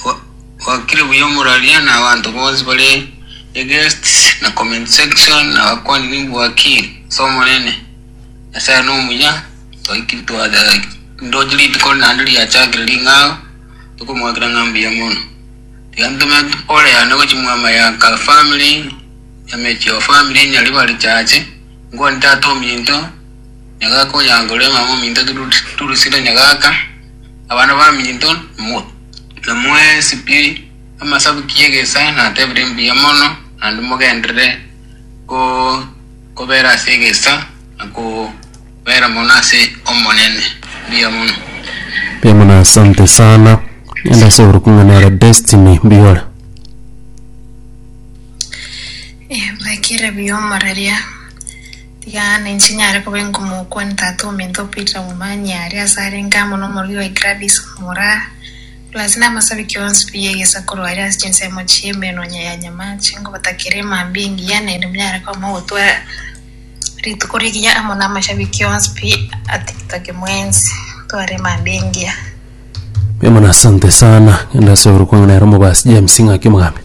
Gwa- gwakire buya moraria na abanto bonsi bare eguest na comment section na bakwani nimbwaki ase omonene nyasaye nomuya twaikire twada ndoche rituko naende riachakire ring'ao tokomwakera ng'a mbuya mono tiga ntome pole yane gochi mwama ya ka family ya mechio family nyaribari chache ngwani tata ominto Nyagaka oyangore omong'ina ominto Turus- Turusilo nyagaka, abana baminto mo- namoe esipiri amasabuki y'egesa natebire mbuya mono, naende mogenderere go- kobera ase egesa na kobera mono ase Omonene. Mbuya mono. Mbuya mono asante sana ande ase oboruku ng'a nere destiny mbigore Ebekire biomoreri aa. Yaani, nchinyare koba enkomokwane tata ominto o Peter Womanya aria ase arenge amo nomorwiri oye Gladys Omura, Plus namasabiki onsi pi ye egesaku roye ase chinsemo chie emenonya ya nyama chinkobatakera emambia engiya naende monyare koamao gotwara rituko rigiya amo namashabiki onsi pi a tiktok mwensi gotwara emambia engiya. Mbuya mono asante sana. Ngende ase orokwango nere omobasi James ng'ake omogambia.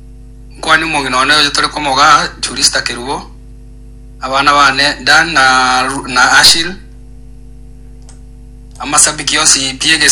Omokuani omong'ina one oyo tore komogaa Jurista Kerubo, abana bane Dan na Ashili, amasabiki onsi biegesaku.